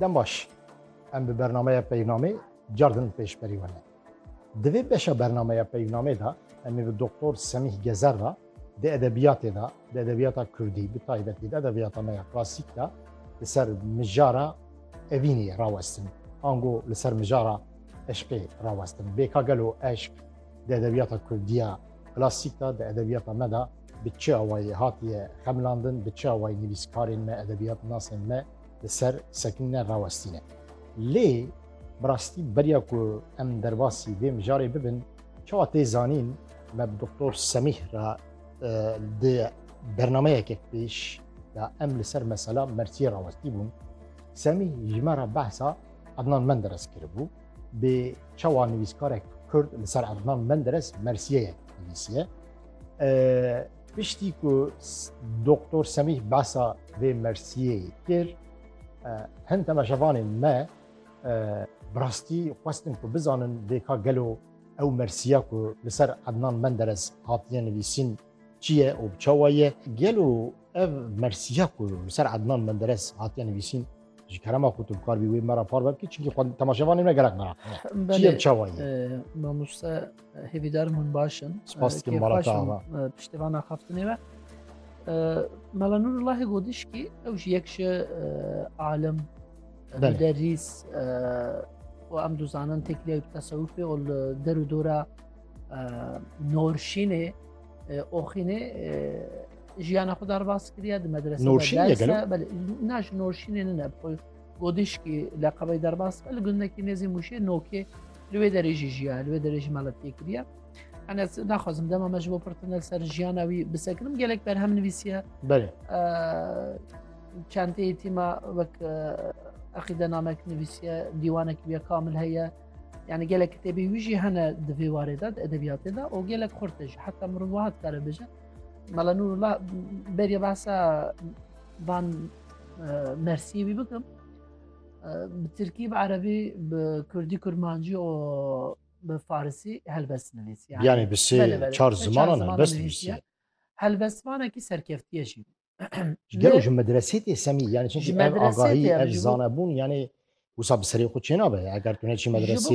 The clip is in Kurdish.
Dem baş, em bi bernameya peyvnamê cardin pêş berî wene. Di vê beşa bernameya peyvnamê de em ê bi Doktor Semîh Gezer re di edebiyatê de, di edebiyata Kurdî bi taybetî di edebiyata me ya klasîk de li ser mijara evînê rawestin. Ango li ser mijara eşqê rawestin. Bêka gelo eşq di edebiyata Kurdiya klasîk de, di edebiyata me de Bi çi awayî hatiye xemilandin, bi çi awayî nivîskarên me, edebiyatnasên me li ser Sekîne rawestîne. Lê bi rastî beriya ku em derbasî vê mijarê bibin, çawa tê zanîn me bi Doktor Semîh re di bernameyeke pêş de em li ser mesela Mertiyê rawestî bûn. Semîh ji me re behsa Ednan Menderes kiribû. Bê çawa nivîskarek Kurd li ser Ednan Menderes Mersiyeyek nivîsiye. Piştî ku Doktor Semîh behsa vê Mersiyê kir, hin temeşevanên me bi rastî xwestin ku bizanin vêka gelo ew Mersiya ku li ser Ednan Menderes hatiye nivîsîn çi ye û çawa ye? Gelo ev Mersiya ku li ser Ednan Menderes hatiye nivîsîn ji kerema xwe tu bikarbî wê me re far bibkî çinkî xwe temaşevanê me gerek me çi ye çawa ye? Mamoste Hêvîdarim hûn baş in. Spas dikim bala te ava. Piştevana xaftinê ve. Mela Nûrullahê gotiş kî ew ji yek ji alim derîs û em dizanin têkiliya tesewufê û li der û dora norşînê oxînê jiyana xwe derbas kiriye di medrese na ji norşînê nine xwe godişkî leqebey derbas li gundekî nêzî mûşê nokê li wê derê jî jiya li wê derê jî me li tê kiriye Enes naxwazim dema me ji bo pirtine ser jiyana wî bisekirim gelek berhem nivîsiye Belê çenteyê tîma wek eqîde namek nivîsiye dîwanek bûye kamil heye yani gelek kitêbî wî jî hene di vê warê de edebiyatê de û gelek xurte jî heta mirov wiha dikare bêje mela nûrullah beriye behsa van mersiyê wî bikim Bi Tirkî, bi Erebî, bi Kurdî, Kurmancî û bi Farisî helbest nivîsî. Yanî bi sê çar zimanan helbest nivîsî. Helbestvanekî serkeftiye jî. Ji gelo ji medresê tê semî yanî çi ev agahî ev zanebûn yanî wisa bi serê xwe çênabe eger tu neçî medresê